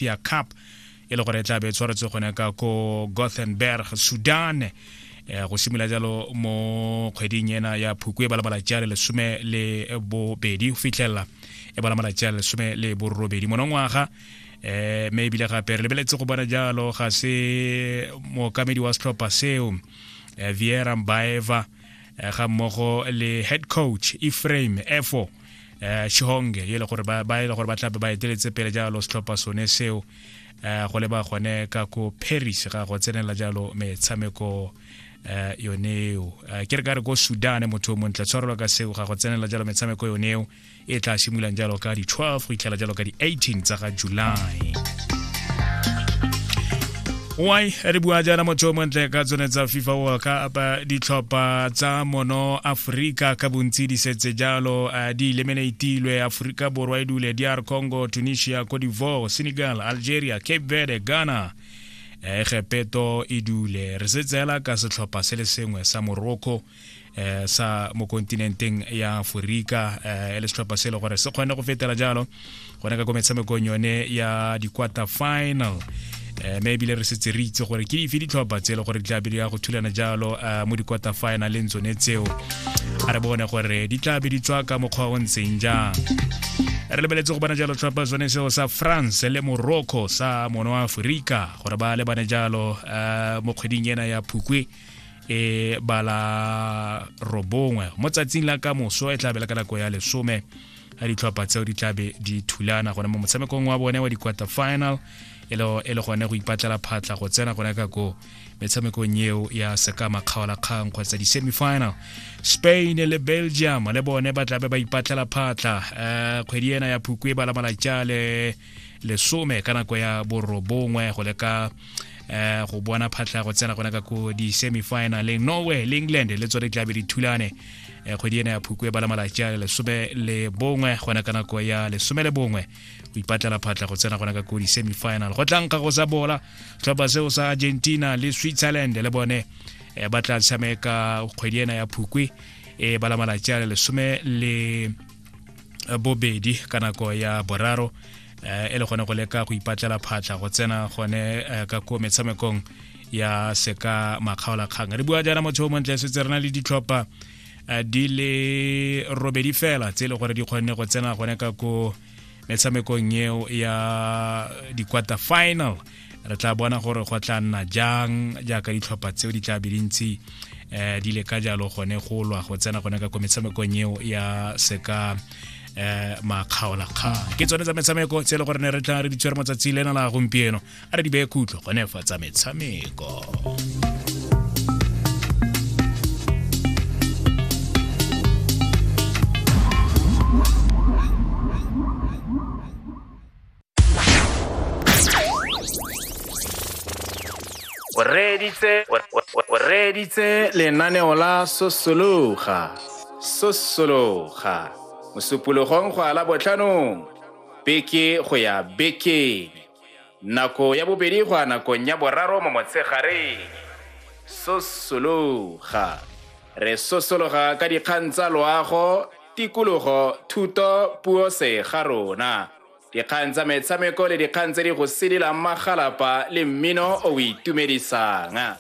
Ethiopia Cup e le gore e tla be e tshwaretswe gone ka ko Gothenburg Sudan eh, go simolola jalo mo kgweding ena ya phukwe ba le malatsi a le lesome le bobedi go fitlhelela e ba le malatsi a le lesome le borobedi monongwaga eh me ebile gape re lebeletse go bona jalo ga se mookamedi wa setlhopha seo eh, viera mbaeva eh, ga mmogo le head coach efraim efo um shihonge e le gore ba e le gore ba tlape ba eteletse pele jalo setlhopha sone seo um go leba gone ka ko paris ga go tsenela jalo metshameko um yoneo um ke re ka re ko sudan motho o montle tshwarelwa ka seo ga go tsenela jalo metshameko yoneo e tla simololang jalo ka di-12 go itlhela jalo ka di-18 tsa ga july why re bua jaana motho o montle ka tsone tsa fifa world cup ditlhopha tsa mono aforika ka bontsi di setse jalo eh, di eliminatilwe aforika borwa e dule dr congo tunisia cote divoire senegal algeria cape verde ghana eh, egepeto e dule re se tseela ka setlhopha se le sengwe sa morocco eh sa mo kontinenteng ya Aforika eh le setlhopha se le gore se kgone go fetela jalo gone ka ko metshamekong yone ya di-quarter final eh mme ebile re setse re itse gore ke dife ditlhopha tse e le gore di tla be di ya go thulana jalo eh, mo di-quarter finaleng tsone tseo a re bone gore di tla be di tswa ka mokgwa o ntseng jang re lebeletse go bona jalo tlhopha sone seo sa france le morocco sa mono wa aforika gore ba lebane jalo eh, mo kgweding ena ya phukwe e ba la robongwe mo tsatsing la ka moso e tla bela ka nako ya lesome ya ditlhopha tseo di tlabe di thulana gone mo motshamekong wa bone wa di-quarter final e le gone go ipatlela phatlha go tsena gone ka ko metshamekong eo ya sekama kgaolakgang kgotsa di-semifinal spain le belgium le bone ba tlabe ba ipatlela phatlha um kgwedi ena ya phukwe ba la malatša le lesome ka nako ya borobongwe go leka eh go bona phatlha go tsena gona ka ko di semifinaleng norway le england le tsone tlabe di thulane eh, kgwedi ena ya phukwe ba la malatsi a lesome le bongwe gona ka nako ya lesome le bongwe go ipatlela phatlha go tsena gona ka ko di semifinal go tlang ka go sa bola tlhopha seo sa argentina le switzerland le bone eh, ba tla tshameka kgwedi ena ya phukwe e eh, ba la malatsi a lesome le bobedi ka nako ya boraro eh, e le gone go leka go ipatlela phatlha go tsena gone eh, ka ko metshamekong ya seka makgaolakgang re bua jaana motho o montle setse re na le ditlhopha eh, di le robedi fela tse e le gore di kgonne go tsena gone ka ko metshamekong eo ya di-quarter final re tla bona gore go tla nna jang jaaka ditlhopha tseo di tla be dintsi um di le ka jalo gone go lwa go tsena gone ka ko metshamekong eo ya seka eh makgaolakgang ke tsone tsa metshameko tse e le gore ne re tla re di tshwere motsatsi lena la gompieno a re di beye khutlo gone fa tsa metshameko o reeditse o- o- o reeditse lenaneo la sosologa sosologa mosupologong go ala botlhanong beke go ya bekeng nako ya bobedi go ya nakong ya boraro mo motshegareng sosologa re sosologa ka dikgang tsa loago tikologo thuto puo se ga rona Dikgang tsa metshameko le dikgang tse di go sedilang magalapa le mmino o o itumedisang.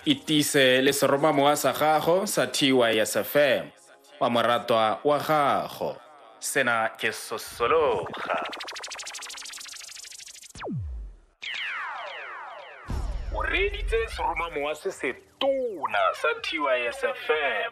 Itise le seromamowa sa gago sa TYSFM wa moratwa wa gago. Sena ke Sosologa. O reeditse seromamowa se se tona sa TYSFM.